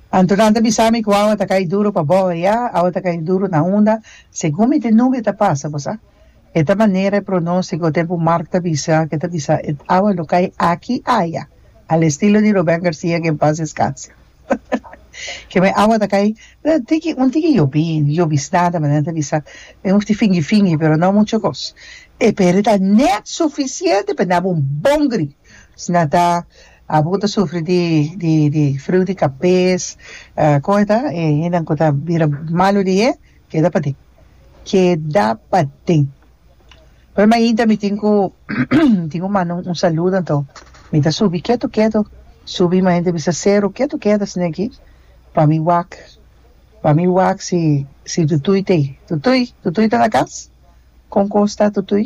Anto nan ta bisa mi ku awa ta kai duru pa boho ya, awa ta kai duru na unda. Segun mi tin nube ta pasa, bo sa. E ta manera e pronostico tempu Mark ta bisa, ke ta bisa e awa lo kai aki aya, al estilo di Ruben Garcia ke en paz descanse. Ke me awa ta kai un tiki un tiki yobi, yobisnan ta manera ta bisa, men hoefti fingi fingi pero no mucho kos. E peri ta net suficiente pa nan habi un bon gri. Nan ta. Abo ku ta sufri di di di friu di kapes kon e ta e hendenan ku ta bira malu di e keda paden keda paden oe mainta mi tin ku mi tin ku manda un un saludo anto mi ta subi ketu ketu subi mainta bisa seru ketu ketu asina aki pa mi wak pa mi wak si si tutuy ta ei tutuy tutuy ta na kas kon kos ta tutuy.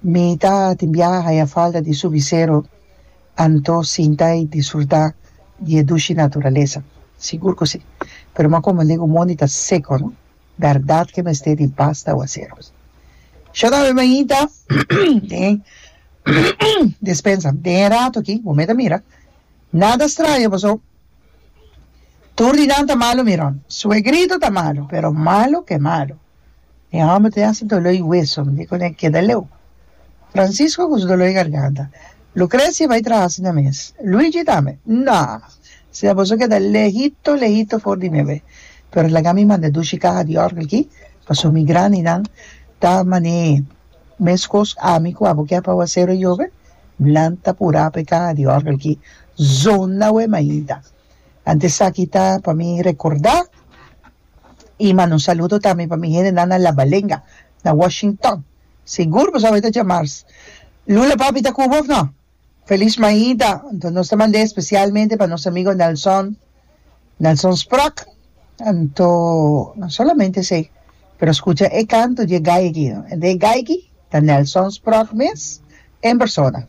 Mi ta tin biaha haña falta di su bisero anto sinta y disfruta di e dushi naturalesa. Sigur cu si. Pero m'a come alegu mondi ta seco, no? Berdad cu e mester di basta aguacero. Shor a Bemainta den e despensa den e rato aki, bo meda mira, nada straño paso tur di nan ta malo mi Ron. Suegrito ta malo, pero malo cu e malo. Mi hòmber tin hasi doló i weso, mi di ku el keda leu. Francisco ku su doló i garganta, Lucrecia bai traha asina mes. Luigi tambe, Nò! Si a boso keda lehito lehito for di mi awé. Pero laga mi manda dushi kaha di òrgel ki, paso mi grandinan ta man'é. Meskos ami ku abo ke pa Awasero e yobe, nan ta purá pa e kaha di òrgel ki zona awé mainta. Ante esaki ta pa mi rekordá. I manda un saludo tambe pa mi hendenan na Labalenga, na Washington. Sigur bo sabé ta djamars. Lula papi ta Cuba of no? Feliz Maida. Anto nos ta mand'é especialmente pa nos amigo Nelson, Nelson Sprach. Anto no solamente esei, pero scucha e canto dje gaigy no. E gaigy ta Nelson Sprach mes en persona.